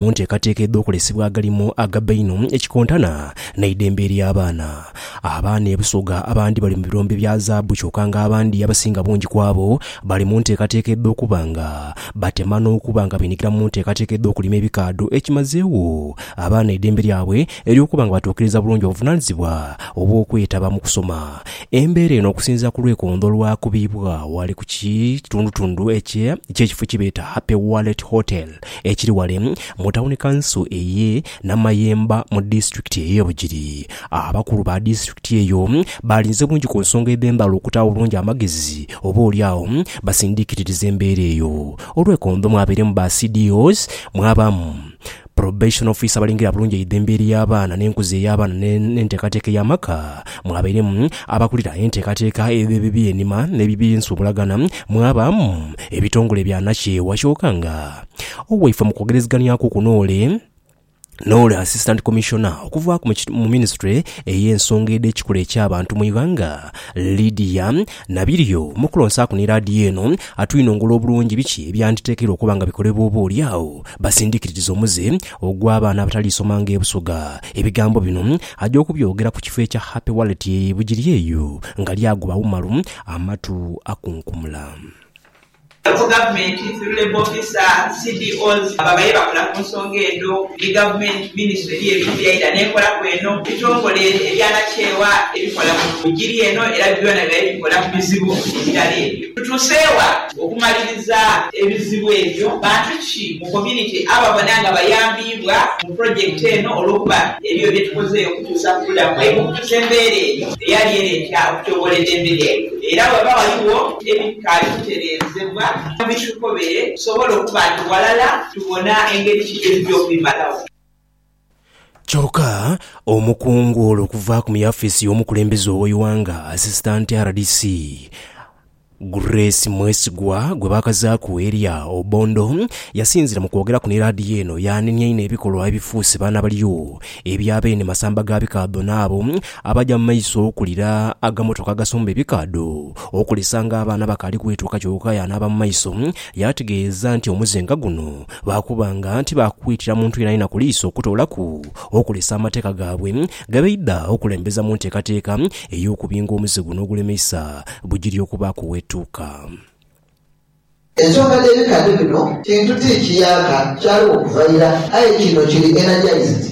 mu nteekateeka edh'okolesebwa agalimo agabba einho ekikontana n'eidembe ery'abaana. Abaana e Busoga abandi bali mu birombe bya zaabu kyoka nga abandi abasinga bungi ku abo bali mu nteekateeka edh'okuba nga batema n'okuba nga beenyigira mu nteekateeka edh'okulima ebikaadho ekimazeegho abaana eidembe lyabwe ery'okuba nga batuukiriza bulungi obuvunaanyizibwa obw'okwetaba mu kusoma. Embeera eno okusinziira ku lwekondo lwakubibwa ghale ku kitundutundu eky'ekifo kyebeeta Happy Wallet Hotel ekiri ghale mu tawuni kanso eye Namayemba mu disitulikiti eye Bugiri. Abakulu ba disitulikiti eyo baalinze bungi ku nsonga edh'embala okuta obulungi amagezi oba oli agho basindiikiririze embeera eyo. Olwekondo mwabairemu ba CDOs, mwabaamu Probation Officer abalingira bulungi eidha embeera ey'abaana n'enkuza ey'abaana n'enteekateeka ey'amaka, mwabairemu abakulira enteekateeka edh'ebibiinhima n'ebibinsubulagana, mwabaamu ebitongole bya nakyewa kyoka nga owaife mu kwogereziganyaku kuno ole n'ole Assistant Commissioner okuvaaku mu Minisitule ey'ensonga edh'ekikula eky'abantu mu ighanga Lydia Nabiryo mu kulonsaaku ni laadiyo eno atwinongole obulungi biki ebyanditekeirwa okuba nga bikolebwa oba oli agho basindikiririze omuze ogw'abaana abataliisoma nga e Busoga. Ebigambo bino aja okubyogera ku kifo ekya Happy Wallet e Bugiri eyo nga lyagoba Umaru amatu akunkumula. Local government through labour officer, CDOs, ababaire bakola ku nsonga edho ni gavumenti, minisitule eriyo ebigya ira n'ekolaku eno, ebitongole ebyanakyewa ebikola mu giri eno era byona bibaire bikola ku bizibu ebirala ebyo. Tutuuse wa okumaliriza ebizibu ebyo? Bantu ki? mu community ababona nga bayambiibwa mu project eno olwokuba ebyo byetukoze okukyusa ku bulamu bwaibwe okutusa embeera eyo eyali ereeta okutyoboola edembe lyaibwe era webaba waliwo ebitaali kutereezebwa bitukobere tusobole okuba nti walala tubona engeri ki gyetujja okubimalawo. Kyoka omukungu ole okuva ku muyafisi y'omukulembeze ow'eighanga, Assistant rdc, Grace Mwesigwa gwe baakazaaku erya Obondo yasinziira mu kwogeraku ni laadiyo eno yaanenia inho ebikolwa ebifuuse baana balyo ebya beene masamba ga bikaadho n'abo abaja mu maiso okulira agamotoka agasomba ebikaadho okulesanga abaana abakaali kwetuuka kyoka yaanaaba mu maiso yaategeeza nti omuze nga guno Baakuba nga tibaakwiitira muntu yenayena ku liiso okutoolaku okulesa amateeka gaabwe ge baidha okulembeza mu nteekateeka ey'okubinga omuze guno ogulemeisa bugiri okubaaku wetuuka. Ensonga dh'ebikani bino kintu ti kiyaaka kyaliwo kuva ira, aye kino kiri energized.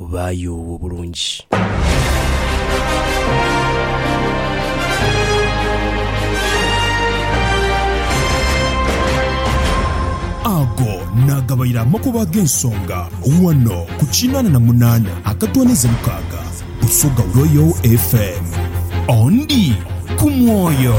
Baayuu obulungi. Ago naagabaire amakubo ag'ensonga ghano ku kinaana na munaana akatwanize mukaaga Busoga Royal FM. Ondi ku mwoyo.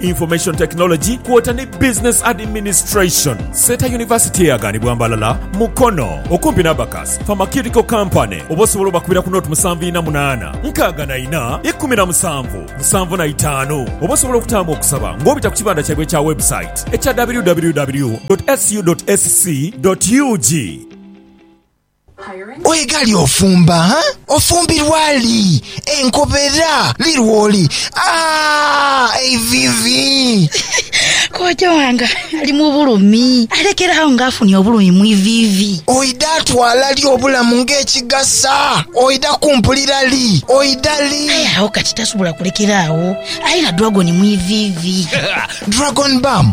Information Technology kwota ni Business Administration. Seeta University eyaganibwa Mbalala, Mukono, okumpi n'Abacus Pharmaceutical Company oba osobola obakubira ku nought musanvu ina munaana nkaaga na ina ikumi na musanvu musanvu na itaanu oba osobola okutaamu okusaba ng'obita ku kibanda kyaibwe ekya website ekya www.ssu.sc.ug. Oye ghali ofumba, ha? Ofumbirwa li? Enkobera li lwoli? Aah! Eiviivi! Kojja wange ali mu bulumi, alekera agho nga afunye obulumi mu iviivi. Oidha twala li obulamu ng'ekigasa? Oidha kumpulira li? Oidha li? Aye agho kati tasobola kulekera agho, aye na dragon mu iviivi. Dragon Bam